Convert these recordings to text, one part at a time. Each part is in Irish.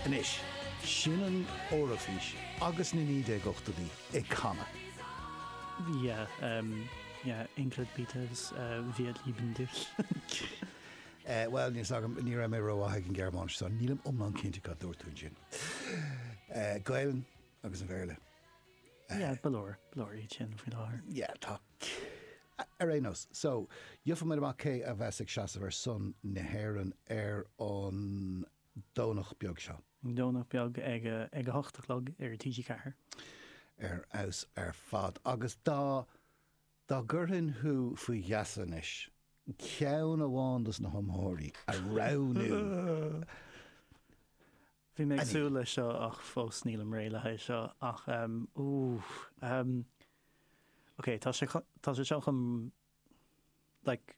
Anois, sin an Eoraifís agus na 1980idí ag canadh. Yeah, um, yeah, Englert Beatles, uh, wir lieben dich. Eh, bhuel, níl fhios agam, ní raibh mé rómhaith ag an Ghearmáinis so nílim iomlán cinnte cad dúirt tú ansin. Eh, Gaelainn agus an Bhéarla. Yeah, ba leor, ba leor iad sin faoi láthair. Yeah, tá Ar aon nós, so, gheobhaidh muid amach cé a bheas ag seasamh ar son na hÉireann ar an Domhnach beag seo. Domhnach beag ag ag a hocht a chlog ar TG4. Ar fheabhas ar fad. Agus dá dá gcuirfinn thú faoi gheasa anois, ceann amháin dos na hiomaitheoirí a roghnú Bhí mé ag súil leis seo ach fós nílim réidh le haghaidh seo ach ehm ooh ehm ok tá sé tá sé seo chum like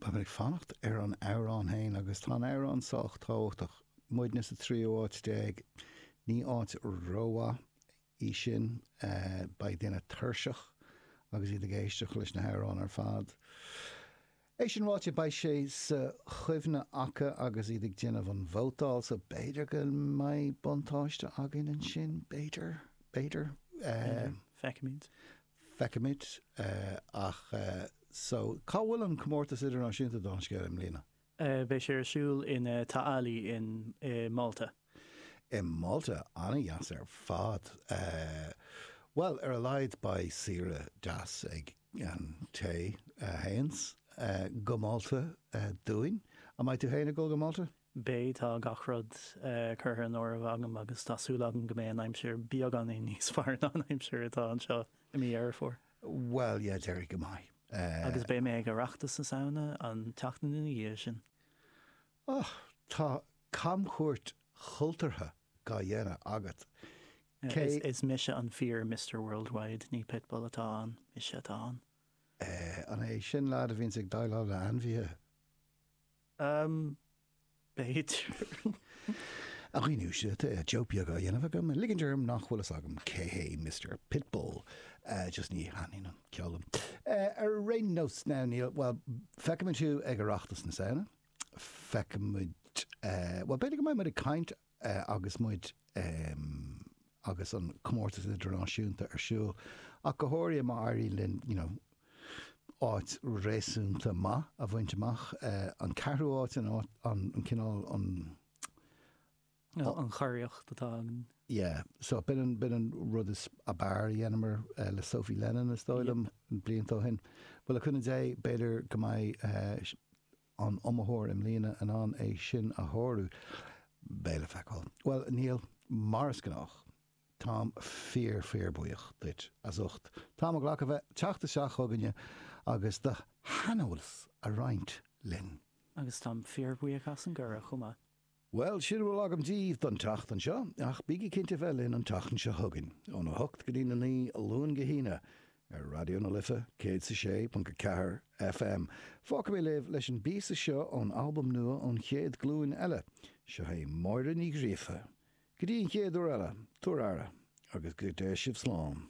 Táim ag fanacht ar an amhrán féin agus tá an amhrán sách tábhachtach. Muidne sa tríú háit déag, ní áit rómhaith í sin. Beidh daoine tuirseach agus iad ag éisteacht leis na hamhráin ar fad. É sin ráite, beidh sé sa chuimhne acu agus iad ag déanamh an vótáil so b'fhéidir go mbeidh buntáiste againn ansin. B'fhéidir. B'fhéidir. B'fhéidir. Feicfimid. feicfimid ach so. Cá bhfuil an Comórtas Idirnáisiúnta dála an scéil i mbliana? Beidh sé ar siúl in Ta' Qali in i Malta. I Malta? An-dheas ar fad. Bhuel, ar a laghad beidh saoire deas ag an té a théanns go Malta dúinn. An mbeidh tú féin ag dul go Malta? Beidh, tá gach rud curtha in áireamh agam agus tá súil agam go mbeidh an aimsir beagáinín níos fearr ná an aimsir atá anseo i mí Dheireadh Fómhair. Bhuel, yeah, déarfainn go mbeidh. Agus beidh mé ag Oireachtas na Samhna an tseachtain ina dhiaidh sin. Och, tá camchuairt chultúrtha dhá dhéanamh agat. Sea. Is mise an fíor Mister Worldwide, ní Pitbull atá ann, mise atá ann. Eh, an é sin leaid a bhíonns ag déileáil le ainmhithe? B'fhéidir. A dhaoine, seo joke beag á dhéanamh agam, ag ligint orm nach bhfuil fhios agam cé hé Mister Pitbull, just ní thaitníonn an ceol liom. Ar aon nós, now, níl, bhuel, feicfidh muid thú ag Oireachtas na Samhna, feicfidh muid, bhuel, b'fhéidir go mbeidh muid ag caint agus muid agus an comórtas idirnáisiúnta ar siúl, ach go háirithe má éiríonn linn you know áit réasúnta maith a bhaint amach, an ceathrú áit, an áit, an cineál, an. an churiarracht atá againn. Yeah, so b'in an, b'in an rud is, ab fhearr a dheineamar le Sophie Lennon is dóigh liom, blianta ó shin. Bhuel le cúnamh Dé, b'fhéidir go mbeidh, an iomaitheoir i mbliana in ann é sin a shárú? Beidh le feiceáil. Bhuel, Niall, mar is gnách, táim fíor fíor buíoch duit as ucht t'am a ghlacadh bheith teacht isteach chugainne agus do shaineolas a roinnt linn. Agus táim fíor bhuíoch as an gcuireadh chomh maith. Bhuel, sin a bhfuil agam díbh don tseachtain seo, ach bígí cinnte a bheith linn an tseachtain seo chugainn, óna hocht go dtí a naoi, Luan go hAoine, ar Raidió na Life, céad is a sé ponc a ceathair FM. Fágfaidh mé libh leis an bpíosa seo ón albam nua ón Chéad Ghlúin Eile. Seo é Máire Ní Ghríofa. Go dtí an chéad uair eile, tugaigí aire, agus go dté sibh slán.